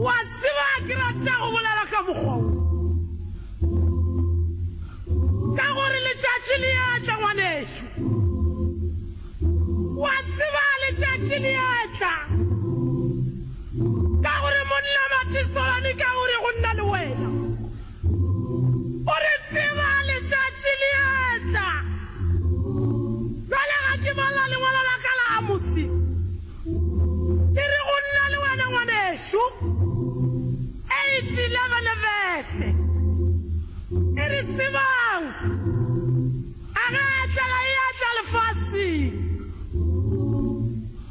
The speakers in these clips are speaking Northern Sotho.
Wa tseba ke rata go bolela ka mokgwa wo, ka gore letšatši le ya tla, ngwanešu. Wa tseba letšatši le ya tla, ka gore monna Matisolani ka gore go nna le wena. O re tseba letšatši le etla. Bjale ga ke bala lengwalo la ka la Amose, le re go nna le wena, ngwanešu, eight elevene vese, e re tsebang. A re, Tlala e a tla lefaseng.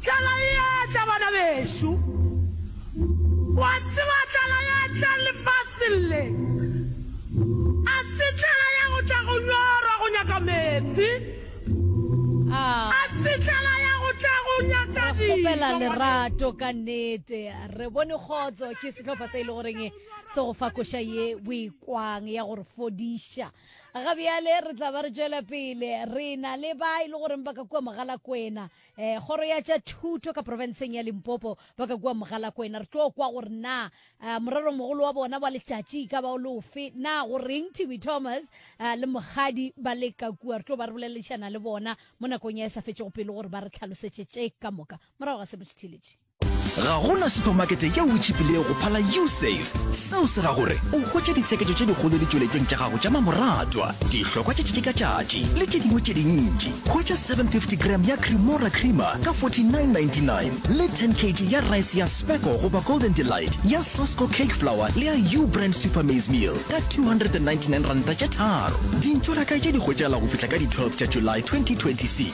Tlala e a tla, bana bešo. O a tseba, tlala e a tla lefaseng le. A se tlala ya go tla go nyora go nyaka meetse. A se tlala ya go tla go nyaka Re dijo. kgopela lerato ka nnete. Re bone kgotso ke sehlopha se e le goreng se go fa koša ye o e kwang ya go re fodiša. ga bjale re tla ba re tšwela pele re na le ba e le goreng ba ka kua mogalakwena um kgoro ya tša thuto ka porofenseng ya limpopo ba ka kua mogalakwena re tlo kwa gore na um morero mogolo wa bona wa letšatši ka ba o leofe na go reng tv thomas um le mogadi ba le ka kua re tlo ba re bolelešana le bona mo nakong ya e sa fetšego pele gore ba re tlhalosetše tše ka moka morago ga seno tšithiletše ga gona supermarket yeo e tšhipilego go phala usafe seo se ra gore o hwetša ditsheketšo tše dikgolo ditšweletšong tša gago tša mamoratwa dihlokwa tše tšetši ka tšatši le tše dingwe tše dintši hwetša 750 gram ya cremora creamer ka 4999 le 10 kg ya rice ya speco goba golden delight ya sasco cake flower le ya u brand super maize meal ka 299 ranta tše tharo dintšo la kae tše di hwetšagala go fihla ka di-12 tša july 2026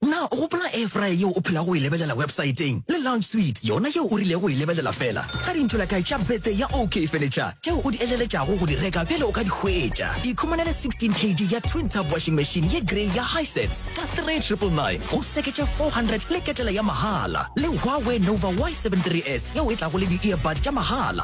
Na o gopola air fryer yeo o phelago o e lebelela websaeteng, le lounge suite yona yeo o rilego o e lebelela fela ga dintho la kae tša birthday ya OK Furniture tšeo o di eleletšago go di reka pele o ka di hwetša? Ikhumanele 16 kg ya twin tub washing machine ye grey ya Hisense ka 3999 go seketša 400 le ketela ya mahala, le Huawei Nova Y73S yeo e tlago le di-earbud tša mahala.